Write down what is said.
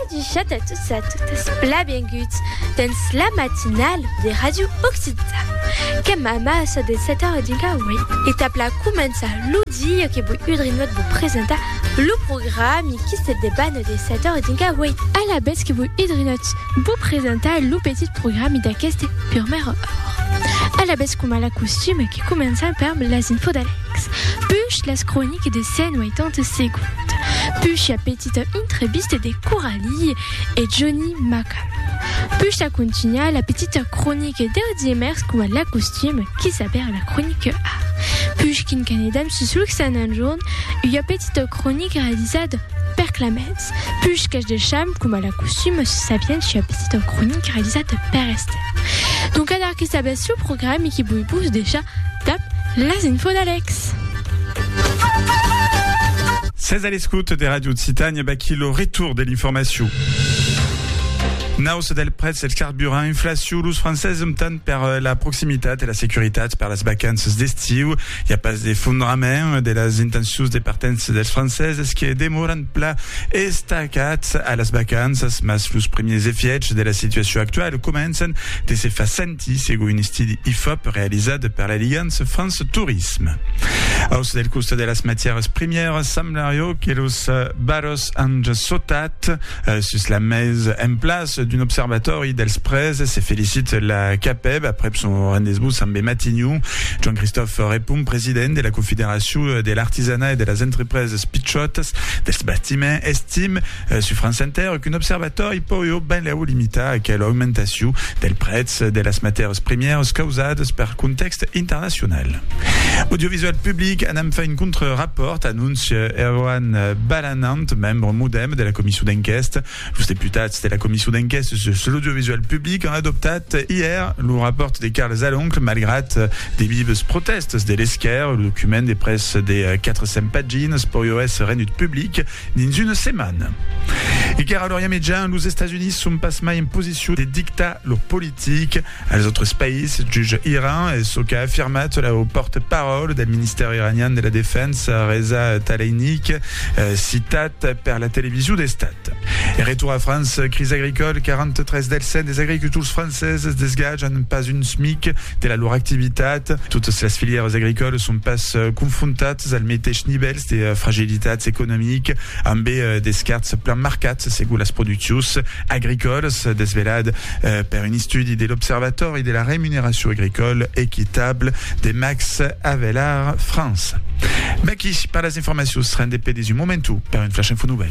Adichat a tots e a totas, blabenguts dens la matinala de Ràdio Occità. Qu'èm amassa de 7 a 5 a 8 e tap la començar lo dia que voi udrinhot vos presentar lo programi qui se debana de 7 a 5 a 8. Alavetz que voi udrinhot vos presentar lo petit programi d'aqueste purmèra ora. Alavetz coma la costuma que començam perm las infos d'Alex. Alex, puish las croniques de 180 segonds, puish la petita intrevista de Coralie e Joni Maca, puish a contunhar la petita cronique deu diemèrç coma l'acostum qui s'aber la cronique a, puish quin qu'anedam sus Luxananjorn, ua petita cronique realizada per Clamet. Ernest Puch qu'es del champ, coma la costum se sabiens ja petit en cronic realizat per Estève. Donc adar que sabètz lo programe e que voi vos decha dab las info d'Alex. Sètz a l'escouta de Radio Occitània, vaquí lo retour de l'informacion. Nausa del prètz del carburant, inflacion, los Francés optan per la proximitat e la securitat per las vacanças d'estiu. I a pas d'efondrament de las intencions de partença dels Francés, es que demoran pla estacats a las vacanças, mas los primièrs efièchs de la situacion actuala començan de se far sentir, segon un estudi Ifop realizat per l'Aligance France Tourisme. Aus del costat de las matièras primièras, semblario que los valors an sautat sus la mes. En plas d'un observatòri dels prèses, se felicit la CAPEB aprèp son rendez-vous ambe Matignon. Joan-Christophe Repon, president de la Confederacion de l'artisanat e de las entrepreses, Las pichòtas dels bastiments, estim, sus France Inter, qu'un observatòri pòió benlèu limitar aquela augmentacion del prètz de las matèras primièras causadas per contèxt internacional. Audiovisual Public anam far un contre-rapòrt, anóncia Erwan Balanant, membre modèm de la comisson d'enquèsta. Los deputats de la Comission d'enquèstes sus l'audiovisual public an adoptat ièr lo rapòrt de Carles Aloncle malgrat de vives protèstas de l'esquèrra. Lo document de pres de 400 paginas pòrió èsser rendut public dins una setmana. Iquèra a l'Orient Mejan, los Estats Units son pas mai en posicion de dictar lor politica. Als autres país, juge Iran, es çò qu'a afirmat lo pòrte-paròl del Ministèri iranian de la Defensa, Reza Taleinik, citat per la television d'Estat. E retorn a França, crisi agricòla, 43 dels 100 des agricultors franceses desgatjan pas un smic de la lor activitat. Totas las filièras agricòlas son pas confrontatas al meteis nivèls de fragilitats economic. ambé d'escarts plan marcats segur las produccions agricòlas, desvelat per un estudi de l'Observatòri de la remuneracion agricòla equitable de Max Havelaar France. Mèqui per las informacions, rendé pedes un momentu per un flash info nouvèl.